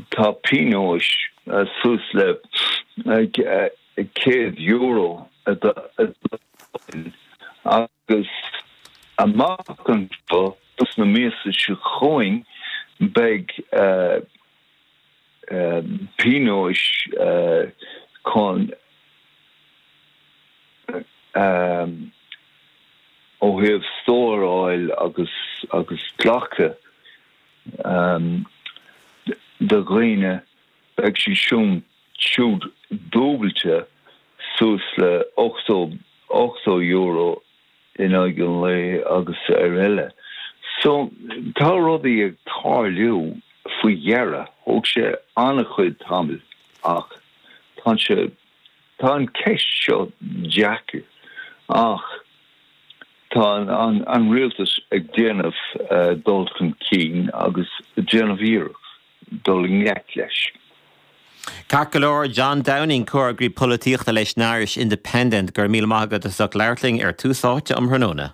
Tá pionóis suas le €100 agus amach anseo sna míosa so chugainn beidh pionóis chun ó thaobh stóráil agus glacadh. de dhaoine, beidh siad siúd dúbailte suas le €80 in aghaidh an lae agus ar eile. So tá rudaí ag tarlú faoi dheireadh. Thóg sé an-chuid tamall ach tá sé Tá an ceist seo deacair ach tá an rialtas ag déanamh dul chun cinn agus ag déanamh iarracht dul i ngleic leis. Ceart go leor, John Downing, Comheagraí Polaitíochta leis an Irish Independent, go raibh míle maith agat as ucht labhairt linn ar Tús Áite um thráthnóna.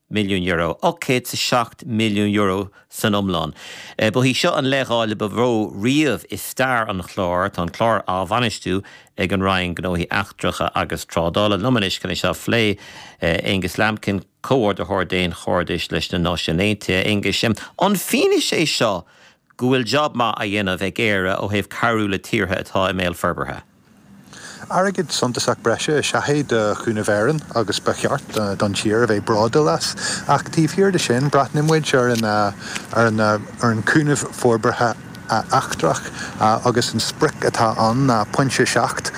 milliún, €807 milliún san iomlán. Ba í seo an leithdháileadh ba mhó riamh i stair an chláir. Tá an clár á bhainistiú ag an Roinn Gnóthaí Eachtracha agus Trádála. liom anois chun é seo a phlé. Aengus Lambkin, Comhordaitheoir Daonchairdis leis na Náisiúin Aontaithe. Aengus, An fianaise é seo go bhfuil jab maith á dhéanamh ag Éire ó thaobh cabhrú le tíortha atá i mbéal forbartha? Airgead suntasach breise is ea é do Chúnamh Éireann agus ba cheart don tír a bheith bródúil as. Ach taobh thiar de sin, breathnaíonn muid ar ar an gcúnamh forbartha eachtrach agus an sprioc atá ann ná pointe 7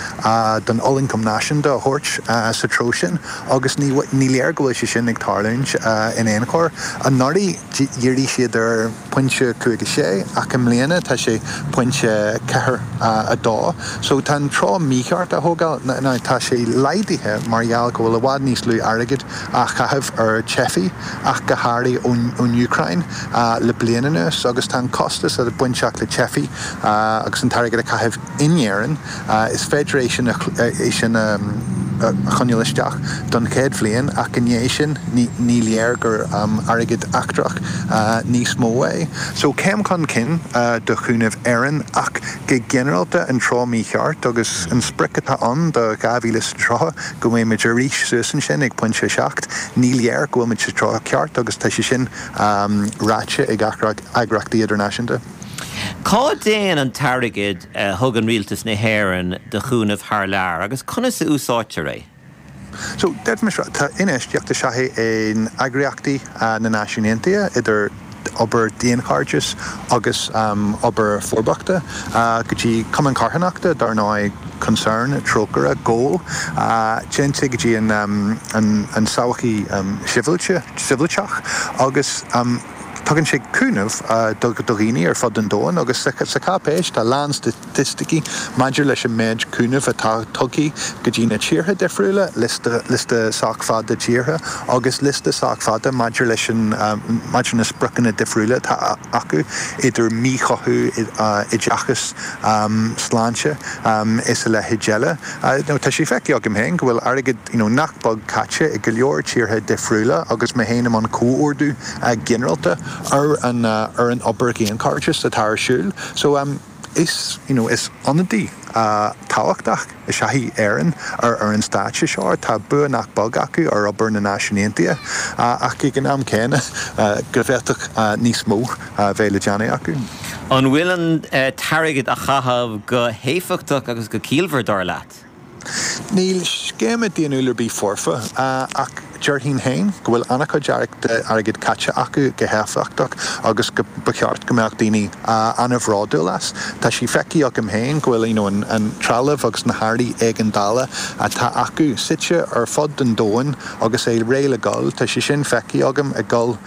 den olloncam náisiúnta a thabhairt sa treo sin agus ní léir go bhfuil sé sin ag tarlúint in aon chor. Anuraidh dhírigh siad ar. pointe cúig a sé, ach i mbliana tá sé pointe ceathair a dó. So tá an treo mícheart á thógáil. Now tá sé laghdaithe mar gheall go bhfuil i bhfad níos lú airgid á chaitheamh ar teifigh ach go háirithe ón Úcráin le bliain anuas agus tá an costas atá bainteach le teifigh agus an t-airgead a chaitheamh in Éirinn Is féidir é sin a choinneáil isteach don chéad bhliain ach i ndiaidh sin ní léir gur airgead eachtrach níos mó é. So céim chun cinn do Chúnamh Éireann ach go ginearálta an treo mícheart agus an sprioc atá ann do 2030 go mbeimid arís suas ansin ag pointe 7, ní léir go bhfuilmid sa treo ceart agus tá sé sin ráite ag eagra eagraíochtaí idirnáisiúnta. Cá dtéann an t-airgead a thugann Rialtas na hÉireann do chúnamh thar lear agus conas a úsáidtear é? So, deirfidh mé seo, tá, infheistíocht is ea é in eagraíochtaí na Náisiún Aontaithe, idir obair daonchairdeas agus obair forbachta, go dtí cumainn charthanachta, dar ndóigh, Concern, Trócaire, GOAL, téann sé go dtí an tsochaí shibhialta, shibhialtach agus. Tugann sé cúnamh do dhaoine ar fud an domhain agus sa cháipéis tá a lán staitisticí maidir leis an méid cúnaimh atá tugtha go dtí na tíortha difriúla, liosta sách fada tíortha agus liosta sách fada maidir leis na spriocanna difriúla atá acu, idir míchothú, oideachas, sláinte is a leithéid eile. Tá sé feicthe agam féin go bhfuil airgead. you know nach beag caite i go leor tíortha difriúla agus mé féin i mbun comhordú ginearálta ar an ar an obair dhaonchairdeas atá ar siúl. So em is you know is ionadaí tábhachtach is ea í Éireann ar ar an stáitse seo. Tá bua nach beag acu ar obair na Náisiún Aontaithe ach ag an am céanna go bhféadfadh níos mó a bheith le déanamh acu. An bhfuil an t-airgead a chaitheamh go héifeachtach agus go ciallmhar, dar leat? Níl scéim dhaonnúil ar bith foirfe, ach déarfainn féin go bhfuil an-chuid airgid caite acu go héifeachtach agus ba cheart go mbeadh daoine an-bhródúil as. Tá sé feicthe agam féin go bhfuil an trealamh agus na hearraí éigeandála atá acu suite ar fud an domhain agus é réidh le dul. Tá sé sin feicthe agam ag dul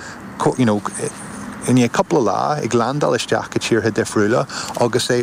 i ndiaidh cúpla lá, ag landáil isteach go tíortha difriúla agus é.